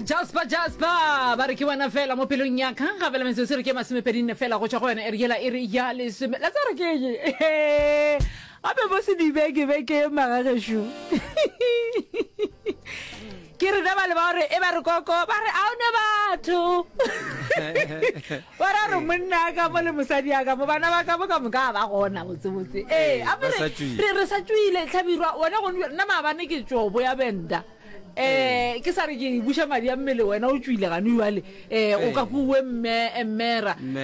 jasper jasper ba re ke wena fela mo pelong ya ka gape le metsotso re ke masomepedi nne fela go tswa go yona erikela e re ya lesome la tsare ke ye gape bo se dibeke beke magagesho ke re ba le ba gore e ba re koko ba re a one batho ba ra re monna ka mo le mosadi ya ka mo bana ba ka mo ka moka ba gona botsebotse ee re sa tswile tlhabirwa one go nna maabane ke tsobo ya benda um ke sa re ke buša madi a mmele wena o tswile gane jale um o ka kuwe mmera um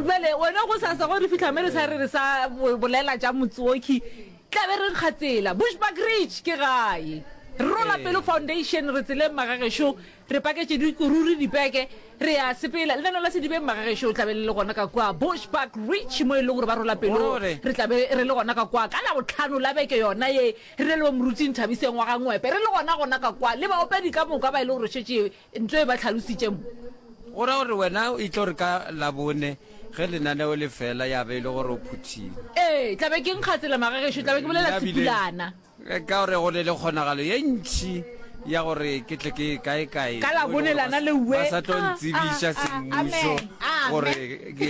jale wena go sa sego re fitlha me re sa re re sa bolela tša motsoki tlabe re nkga tsela bushback rich ke gae rola pelo foundation re tseleng magagešo re paketše dikururi dipeke re ya sepela lenano la sedibeng magagešo o tlabe le le gona ka kwa bushback rich mo e le gore ba rola pelo re tlabe re le gona ka kwa ka labotlhano la beke yona ye Re leboge Moruti Nthabiseng wa ga Ngwepe. Re le gona gona ka kwa le baopedi ka moka ba e le gore šetše nto e ba tlhalositše mo. Go ra gore wena o tlo re ka Labone ge lenaneo le fela ya be e le gore o phuthile? Ee, tla be ke nkga tsela magagešo, tla be ke bolela Sepulana. Ka gore go ne le kgonagalo ye ntši ya gore ke tle ke kae kae ka Labone lana le we. Ba sa tlo ntsebiša semmušo gore ke.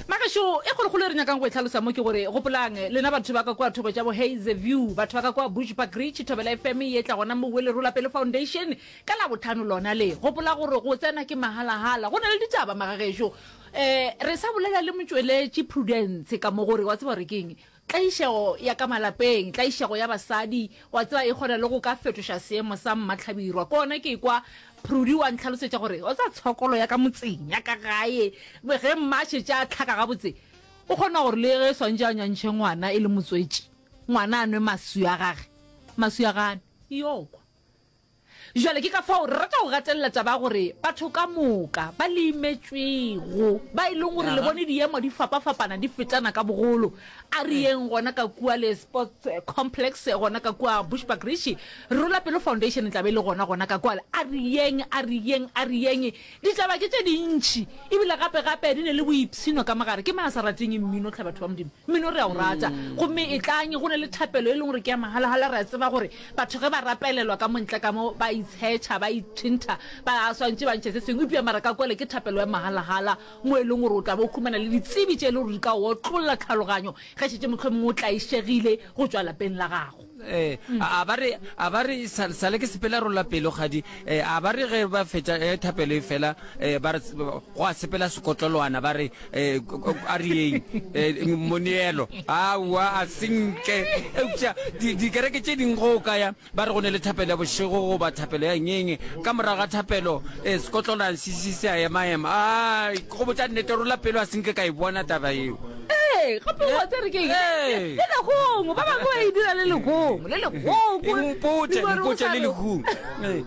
Na gešo e kgolokgolo e re nyakang go e hlalosa mo ke gore, gopolang, lena batho ba ka kua thoko tša bo Hazyview, batho ba ka kua Bushbuck Ridge, thobela FM ye tla gona mo Wellerola pele Foundation, ka Labohlano lona le gopola gore go tsena ke mahalahala. Go na le ditaba, magagešo. Um, re sa bolela le motšweletši Prudence ka mo gore, wa tseba gore ke eng? Tlaišego ya ka malapeng, tlaišego ya basadi, wa tseba, e kgona le go ka fetoša seemo sa mmatlhabirwa. Ke gona ke ekwa Prudy wa ntlhalosetša gore, wa tseba, tshokolo ya ka motseng, ya ka gae, ge mma a šetše a hlaka gabotse, o kgona gore le ge swantše a nyantšhe ngwana e le motswetši, ngwana a nwe maswi a gage, maswi a gane, yoo kwa. Bjale ke ka fao re rata go gatelela taba ya gore batho ka moka ba le imetšwego, ba e leng gore le bone diemo di fapafapana di fetana ka bogolo. A re yeng gona ka kua le Sports Complex, gona ka kua Bushbuckridge, Rola Pelo Foundation e tla be e le gona gona ka kwale. A re yeng, a re yeng, a re yeng. Ditaba ke tše dintši, e bile gape gape di ne le boipshino ka mogare. Ke mang a sa rateng mmino? Tlhe, batho ba Modimo, mmino re a o rata. Gomme etlang, go na le thapelo e leng gore ke ya mahala-hala. Re a tseba gore batho ge ba rapelelwa ka mo ntle ka mo, ba itshetšha, ba itšhintha, ba swantše ba ntšhe se sengwe. Eupša mara ka kwele ke thapelo ya mahala-hala, mo e leng gore o tla be o humana le ditsebi tše e le gore di ka o otlolla tlhaloganyo ge šetše mohlomongwe o tlaišegile go tšwa lapeng la gago. Eh, a ba re a ba re sa sa le ke sepela rola pelo gadi eh, a ba re ge ba fetša eh, thapelo e fela eh, ba re s- go a sepela sekotloloana ba re eh, k- k- a re yeng eh, moneelo aowa a senke eupša di- dikereke tše ding go o kaya ba re go ne le thapelo ya bošego goba thapelo ya ngenge ka morago ga thapelo eh, sekotloloana se se se a emaema ai Ke go botša nnete, rola pelo, a se nke ka e bona taba yeo. Ee, gape o botša re ke eng? Ee. Le legong, ba bangwe ba e dira le legong, le legong. Eng, mpotše, mpotše le legong. Ee,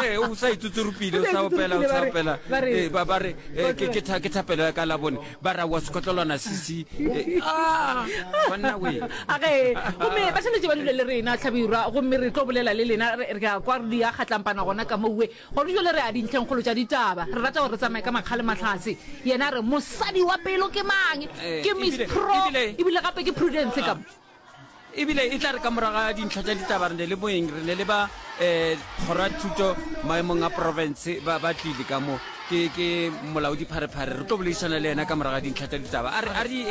ee, o sa itsotsorophile, o sa opela, o sa opela. Ee, ba ba re, ee, ke, ke, tha, ke thapelo ya ka labone, ba ra wa sekhotlolwana sisi. Ee, ah, banna we. A ge, gomme ba swanetše ba dule le rena, hlabirwa, gomme re tlo bolela le lena, re, re a kwa re di a kgatlampana gona ka mo we. Gona jwale re ya dintlhengkgolo tša ditaba. Re rata gore re tsamaye ka makga le mahlatse. Yena a re, Mosadi wa pelo ke mang? Ke Miss Pro, ebile gape ke Prudence ka mo. Ebile e tla re ka morago ga dintlha tša ditaba re ne le moeng, re ne le ba um kgoro ya thuto maemong a porofense ba ba tlile ka mo. Ke ke molaodipharephare. Re tlo boledišana le yena ka morago ga dintlha tša ditaba. A re, a re,